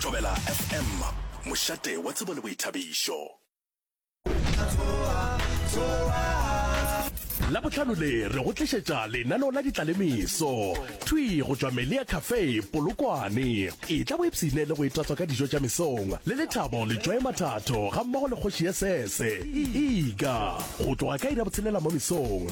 Thobela FM, mošate wa tsebo le boithabišo. Labohlano le re go tlišetša lenaneo la ditlalemeso thwi go tšwa Melia Cafe Polokwane. Etla o ipshine le go itatswa ka dijo tša mesong le Lethabo Letšwae Mathatho gammogo le Kgoši ya Sese Iga go tloga ka iri ya botshelela mo mesong.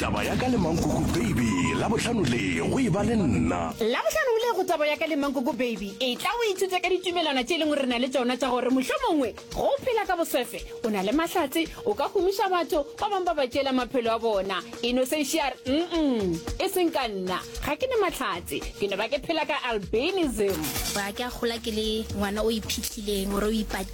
taba ya ka le mankoko baby la bohlano le go e ba le nna la bohlano o le go taba ya ka le mankoko baby e tla o ithute ka ditumelwana tše e leng gore re na le tsona tša gore mohlho mongwe go phela ka bosefe o na le mahlatse o ka humiša batho ba bangwe ba ba tšeela maphelo a bona e no sešar mm e seng ka nna ga ke ne mahlatse ke no ba ke phela ka albanism ba ke a gola ke le ngwana o iphitlhileng ore o ipatile